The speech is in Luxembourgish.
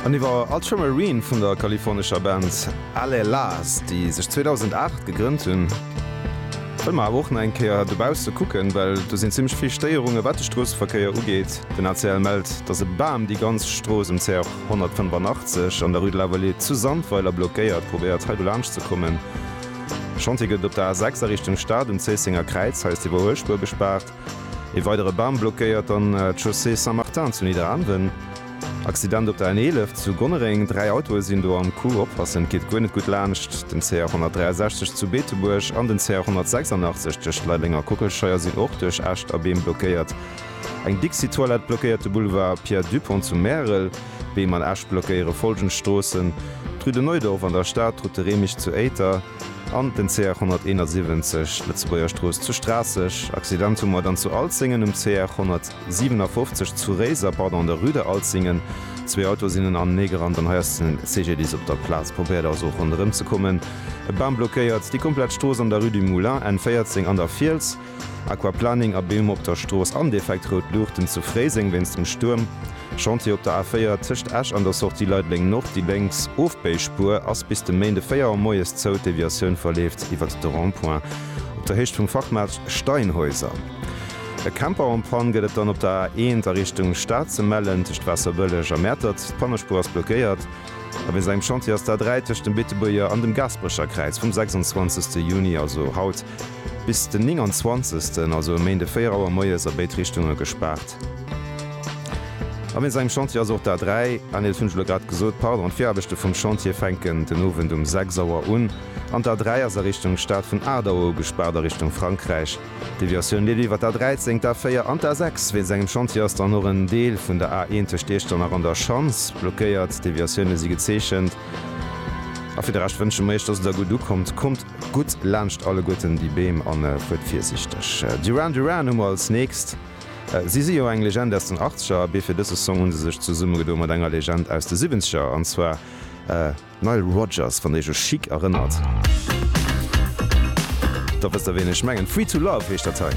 An iwwer Ultramarine vun der kalifornescher Band Alelaz, déi sech 2008 gegrënnt hunn, wëlle mer awer och nach eng Kéier dobausse kucken, well do sinn zimmlech vill Stéierunge wat de Stroosseverkéier ugeet. Den ACL mellt, datt e Bam déi ganz Strooss um CR 185 an der Rue de la Vallée zu Sandweiler blockéiert, probéiert hei dolaansch ze kommen. Chantier gëtt et op der A6 a Richtung Stad um Zéissenger Kräiz, hei ass déi Iwwerhuelspuer gespaart. Ee weidere Bam blockéiert dann d'Chaussée Saint-Martin zu Nidderaanwen. Accident op der N11 zu Gonnereng, dräi Autoe sinn do am Coup, oppassen, et geet guer net gutt laanscht den CR 163 zu Beetebuerg an den CR 186 tëscht Leideleng a Kockelscheier sinn och duerch Äscht a Beem blockéiert. Eng Dixi-Toilette blockéiert de Boulevard Pierre Dupong zu Märel. Beem an Äscht blockéiere follgend Stroossen, d'Rue de Neudorf an der Stad, d'Route de Remich zu Éiter, An den CR 171, Lëtzebuerger Strooss zu Straasseg. Accident hu mer dann zu Alzingen um CR 157, zu Réiser, pardon, an der Rue de Alzingen. Zwee Autoe sinn enanené gerannt an hei ass den CGDIS op der Plaz. Probéiert also och ronderëm ze kommen. E Bam blockéiert déi komplett Strooss an der Rue du Moulin N 14 an der Fiels. Aquaplaning a Beem op der Strooss an defekt rout Luuchten zu Fréiseng wéinst dem Stuerm. Chantier op der A4 tëscht Esch an der Sortie Leideleng Nord, déi lénks Ofbéispuer ass bis de Méinde 4 Auer moies zou, d'Deviatioun verleeft iwwert de Rond-point op der Héicht vum Fachmaart Steinhäuser. E Camper en panne gëtt et dann op der A1 a Richtung Stad ze mellen tëscht Waasserbëlleg a Mäertert, d'Pannespuer ass blockéiert. A wéinst engem Chantier ass d'A3 tëscht dem Beetebuerger an dem Gaasperecher Kräiz vum 26 Juni, also haut, Bis den 29. also e Méinde 4 Auer moies a béid Richtunge gespaart. A wéinst engem Chantier ass och d'A3 année, dat hunn ech elo grad gesot, pardon, d'Viraarbechte vum Chantier fänken den Owend um 6 Auer un an d'A3 ass a Richtung Stad vun 8 Auer u gespaart a Richtung Frankräich. D'Deviatioun leeft iwwer d'A13, d'A4 an d'A6. Wéinst engem Chantier ass dann och en Deel vun der A1 tëscht Iechternach an der Schanz blockéiert. D'Deviatioune si gezeechent a fir de Rescht wënsche mir iech, dass et der gutt ukommt. Kommt. Gutt laanscht alleguerten déi Beem an fuert virsichteg. Duran Duran hu mer als nächst. Si si jo eng Legend aus den Achtzeger, abee fir dëse Song hu se sech zesummegedo mat enger Legend aus de Siwwenzeger, an zwar Nile Rodgers. Wann Iech u Chic erënnert, da wësst Der ween ech mengen. Free To Love heescht dat hei.